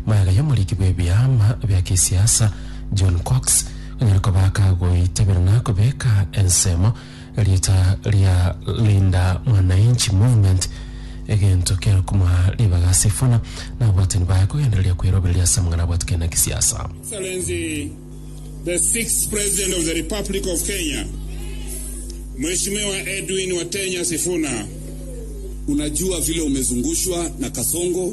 Moyaga y'omoriki bw'ebiama bia gesiasa John Cox onyare koba akagoitabera na kobeka ensemo rieta ria Linda Mwananchi Movement egento kiare komoa ribaga ase Sifuna na abwatani baye kogendereria kwerobereria ase amang'ana abwatikane na gesiasa. Excellency the Sixth President of the Republic of Kenya, Mheshimiwa Edwin Watenya Sifuna. Unajua vile umezungushwa na Kasongo.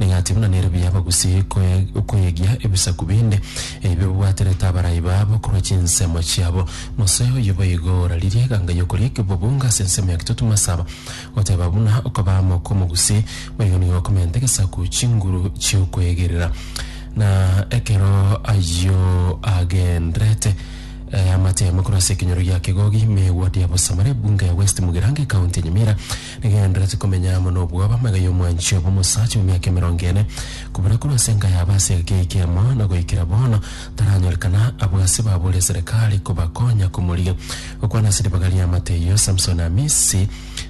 Ning'ati buna nere buya abagusii koye koyegia ebisaku binde, ebio bibwaterete abarai babo korwa chinsemo chiabo. Mose oyio boigo oraririe eganga y'okoria ekebobunga ase ensemo ya Kitutu Masaba, goteba buna okobaa amo kw'omogusii, boigo nigo okomenta egesaku chinguru chi'okwegerera. Na ekero ayio agendererete, eamate yamo korwa ase ekenyoro gia Kegogi, ime egwa Diabo-Samara, ebunga ya West Mugirango, ekaunti ya Nyamira, Rigenderereti komenya amo nobwoba amaiga y'omwanchio bw'omosacha bw'emiaka emerongo ene, kobura korwa ase enka yabo ase egeka eke kemo, na goikera bono taranyorekana, abwo ase baboria eserekari kobakonya komorigia. Gokwana ase ribaga ri'amate eyio, Samson Amisi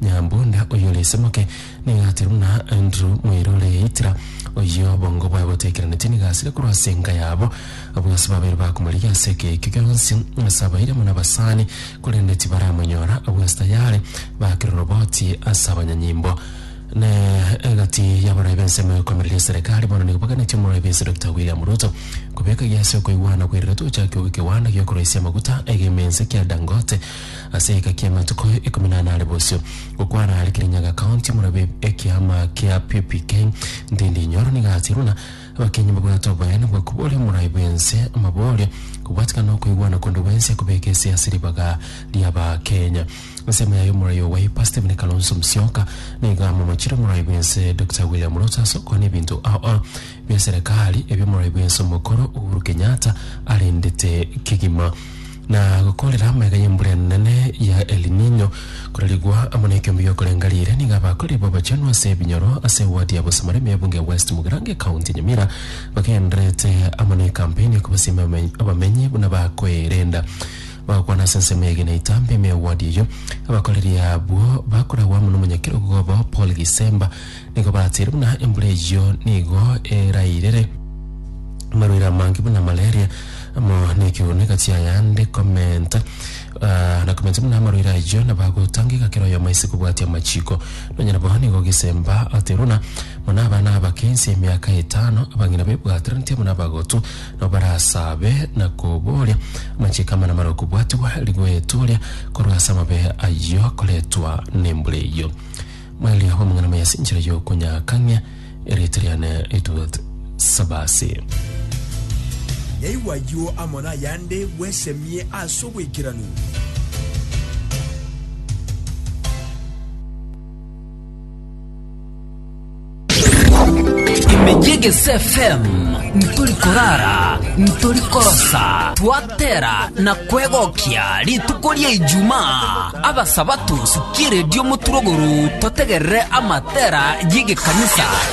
Nyambunda, oyio ore esemoke, nigo ateirwe buna Andrew moira ore Eitra, oyio obongo bwaye botaikeranetie, nigo asire korwa ase enka yabo, abwo ase babere bakomorigia ase egeka ekio gionsi, ase abairi amo nabasani, korende tibaramonyora agwo esita yare, bakire oroboti ase abanyanyimbo. Na egati y'abarai b'ensemo ekoimereria eserekari bono nigo baganetie Omoraibisi Dokita William Ruto kobeka egia ase okoigwana koirire tochaki ogo ekegwanda gi'okoroisia amaguta egemense kia Dangote ase egeka ki'amatuko ikomi na anare bosio. Gokwana are Kirinyaga County, Omorabi ekiama kia PPK Ndindi Nyoro nigo atirwe na Abakenyi mbabwate oboyani bwa koboria omorai bw'ense amaborie, kobwatikana na okoigwana konde gwense kobeka ese ase ribaga ri'Abakenya. Ensemo yaye omorai oo bwaipa Stephen Kalonzo Musyoka nigo amomochire omorai bw'ense Dokita William Ruto ase okwana ebinto ao ao bia serekari ebio omorai bw'ense omokoro Uhuru Kenyatta arendete kegima. na gokoorera amaiga y'embura enene ya El Niño, korarigwa amo nekiombe gi'okorenga riire, nigo abakori b'abachenu ase ebinyoro ase ewadi ya Bosamoro ime y'ebunge ya West Mugirango ecounty ya Nyamira bagendererete amo ne campaign ya kobasiima abame- abamenyi buna bakoerenda bagokwana ase ensemo ya Genaitambe ime y'ewadi eyio. Abakoreri abwo bakoragwa amo n'omonyakerogo obo Paul Gisemba Nigo batiire buna embura eyio nigo erairire amarwaire amange buna malaria amo nekiurune gati ayande komenta ah, na komenta buna amarwaire ayio nabo agotangeka kera oyomo ase kobwatia amachiko nonya nabo nigo ogesemba ateruna buna abana abake inse emiaka etano abang'ina bebwataranete buna abagotu nabo barasabe na koboria amachiko amana mare okobwatigwa rigoeturia korwa ase amabe ayio koretwa nembura eyio Maeli abe omong'ina moya ase enchera y'okonyakang'ia erieta riane ritugat Sabasi. Yaigwa ayio amo nayande, bwesemie ase obwaikeranu. Emegegesi FM ntori korara, ntori korosa, twatera na kwegokia rituko ria Ijumaa. Abasabato sikiredio moturogoro totegerere amatera y'egekanisa.